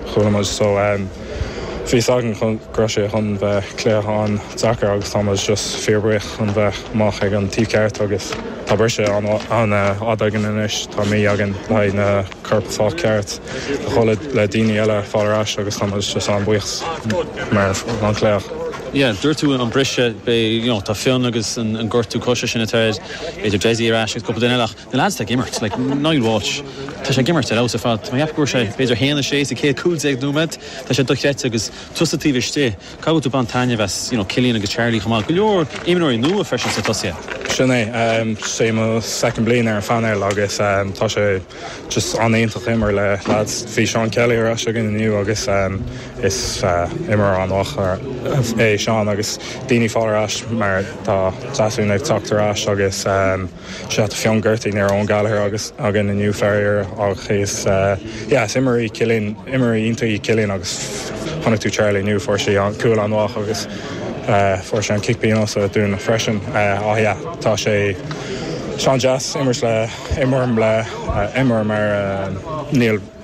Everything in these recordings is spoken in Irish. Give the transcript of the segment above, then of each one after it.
Chuala muid so bhí 's againn go raibh sé chun bheith cluiche an-deacair agus tá muid just fíorbhuíoch chun bheith amach ag an taobh ceart agus tá briseadh an-fhada againn anois, tá mí againn le haghaidh na coirp fáil ceart agus cúpla daoine eile fáil ar ais agus tá muid just an-bhuíoch mar an cluiche. Yeah, dúirt tú an briseadh, beidh, you know, tá Fionn agus an gortú coise sin atá air, beidh Dessie ar ais agus cúpla duine eile ach Na leaids tá ag imirt, like Niall Walsh, tá sé ag imirt ar fheabhas ar fad. Mé ag ceapadh go bhfuair sé b'fhéidir 1, 6 sa chéad 15 nóiméad, tá sé dochreidte agus tusa taobh istigh, an bhfuil tú ag baint taitneamh as you know Cillian agus Charlie chomh maith, go leor imreoirí nua freisin sna tosaithe. Sin é. Sé mo second bliain ar an phainéal agus tá sé just an-iontach imirt le leaids. Bhí Seán Kelly ar ais againn inniu agus is imreoir an-mhaith é Seán agus daoine fáil ar ais mar tá Deasún ag teacht ar ais agus, Sea tá Fionn gortaithe, ní raibh Owen Gallagher agus againn inniu, faraor, ach is, yeah, is imreoir é Cillian, imreoir iontach é Cillian agus chonaic tú Charlie inniu, fuair sé an, cúl an-mhaith agus fuair sé an cic pionóis dúinn freisin. Ach yeah, tá sé, is an-deas imirt le, imirt le imreoir mar Niall.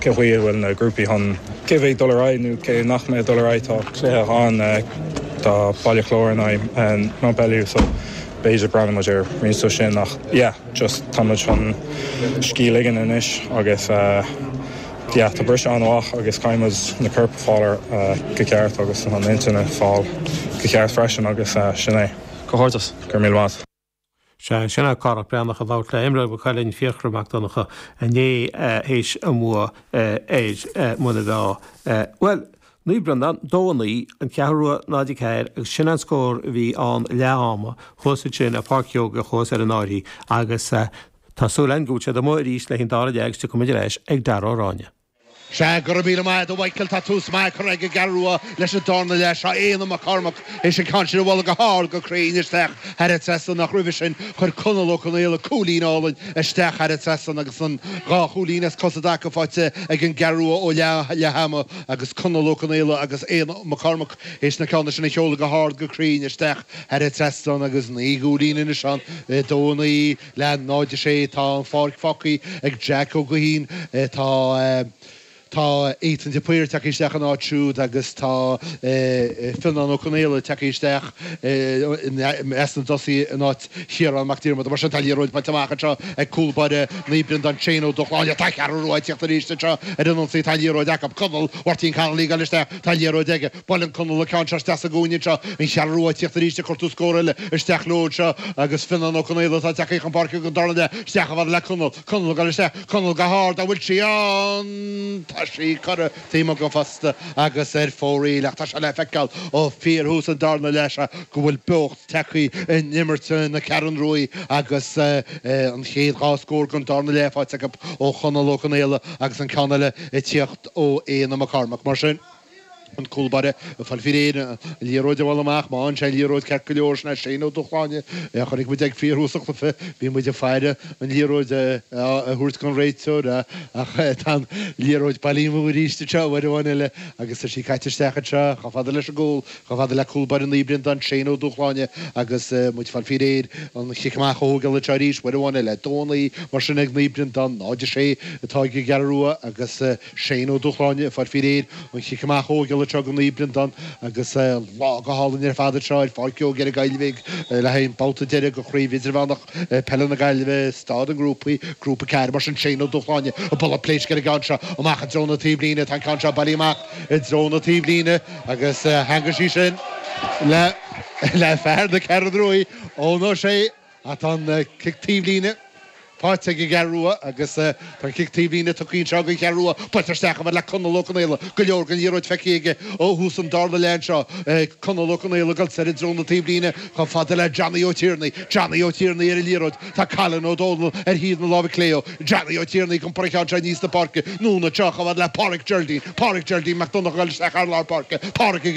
Cén chaoi a bhfuil na grúpaí chun. Cé a bheidh ag dul ar aghaidh nó cé nach mbeidh ag dul ar aghaidh? Tá. cluiche ann do Bhaile Chláir in aghaidh Mountbellew so b'fhéidir breathnóidh muid ar roinnt de sin ach yeah just tá muid chun scíth ligean anois agus yeah tá briseadh an-mhaith agus caithfidh muid na coirp a fáil go ceart agus an intinn a fáil go ceart freisin agus sin é. Comhghairdeas. Go raibh míle maith. Sea, sin é Cárthach Breathnach ag labhairt le imreoir Mhaigh Cuilinn, Fiachra Mac Donncha, inné théis a mbua ar Muine Mheá. Bhuel, Naomh Breandán 2-9, An Cheathrú Rua 0-4 agus sin an scór a bhí ann leath ama, thuas ansin ar Pháirc Sheoige, thuas ar an bhFairche agus tá súil againn go bhfuil siad amuigh arís le haghaidh an dara leath agus tiocfaidh muid ar ais ag Darragh Ó Ráinne. Sea, go raibh míle maith agat, a Mhichael, tá tús maith curtha ag an gCeathrú Rua leis an darna leath. Tá Éanna Mac Cormaic théis an ceann sin a bhualadh go hard go cruinn isteach thar an trasnán ach roimhe sin chuir Conall Ó Conaola cúilín álainn isteach thar an trasnán agus an dhá chúilín as cosa i dtaca faighte ag an gCeathrú Rua ó leath ama agus Conall Ó Conaola agus Éanna Mac Cormaic théis na ceanna sin a sheoladh go hard go cruinn isteach thar an trasnán agus naoi gcúilín anois ann, 2-9. Le 0 6 Tá an pháirc fágthaí ag Jack Ó Gaoithín. Tá Tá Ethan de Paor ag teacht isteach ina áit siúd agus tá Fionnán Ó Conaola ag teacht isteach i measc na dtosaithe in áit Chiarán Mac Diarmada. Mar sin tá an liathróid buailte amach anseo ag cúl báire Naomh Breandán Shane Ó Dúshláine. Tá an Cheathrú Rua ag tíocht arís anseo ar an ionsaí. Tá an liathróid acu. Conall Mháirtín Connolly ag goil isteach. Tá an liathróid aige. Buaileann Conall an ceann seo isteach sa gcúinne seo, an Cheathrú Rua ag tíocht arís ag cuartú scór eile isteach leo anseo agus Fionnán Ó Conaola atá tagthaí chun páirce gon darna leath isteach chomh fada le Conall. Conall ag dul isteach. Conall go hard. An bhfuil sí ann? Tá sí curtha taobh amuigh den phosta agus ar fóraoil ach tá sé le feiceáil ó fíorthús an darna leath seo go bhfuil beocht tagthaí in imirt na Ceathrún Ruaidh agus an chéad dhá scór den darna leath faighte acu ó Chonall Ó Conaola agus an ceann eile ag tíocht ó Éanna Mac Cormaic. Mar sin. an cúl báire ag fáil faoi réir an liathróid a bhualadh amach, má fhaigheann sé an liathróid ceart go leor, sin é Shane Ó Dúshláine, chonaic muid é ag fíorthús an chluiche, bhí muid ag faire an liathróid a thabhairt gon réiteoir ach tá an liathróid bailí amú arís anseo, uair amháin eile agus tá sí caite isteach anseo, chomh fada leis an gcúl, chomh fada le cúl báire Naomh Breandán, Shane Ó Dúshláine agus muid ag fáil faoi réir an chic amach a thógáil anseo arís, uair amháin eile, 2-9, mar sin ag Naomh Breandán, 0-6 atá ag an gCeathrú Rua agus. Shane Ó Dúshláine ag fáil faoi réir an chic amach a thógáil anseo go Naomh Breandán, agus lá go hálainn ar fad anseo ar Pháirc Joe Gerry Gaillimhe le haghaidh an babhta deireadh de Chraobh Idirmheánach Peile na Gaillimhe, Staid na nGrúpaí, Grúpa 4. Mar sin, Shane Ó Dúshláine, ag bualadh pléisc ar an gceann seo, amach i dtreo na taobhlíne, tá an ceann seo bailí amach i dtreo na taobhlíne agus theangaigh sí sin le fear na Ceathrún Ruaidh, Eoin Ó Sé. Ach tá an cic taobhlíne faighte ag an gCeathrú Rua agus tá an cic taobhlíne tógtha anseo ag an gCeathrú Rua. Buailte isteach chomh fada le Conall Ó Conaola. Go leor den liathróid feicthe aige ó thús an darna leath anseo. Conall Ó Conaola ag dul soir i dtreo na taobhlíne chomh fada le Johnny Ó Tiarnaigh. Johnny Ó Tiarnaigh ar an liathróid. Tá Colin Ó Domhnaill ar thaobh na láimhe clé dó. Johnny Ó Tiarnaigh ag iompar an cheann seo aníos na páirce. Anonn anseo chomh fada le Páraic Geraldine. Páraic Geraldine Mac Donnacha ag dul isteach thar lár páirce. Páraic ag.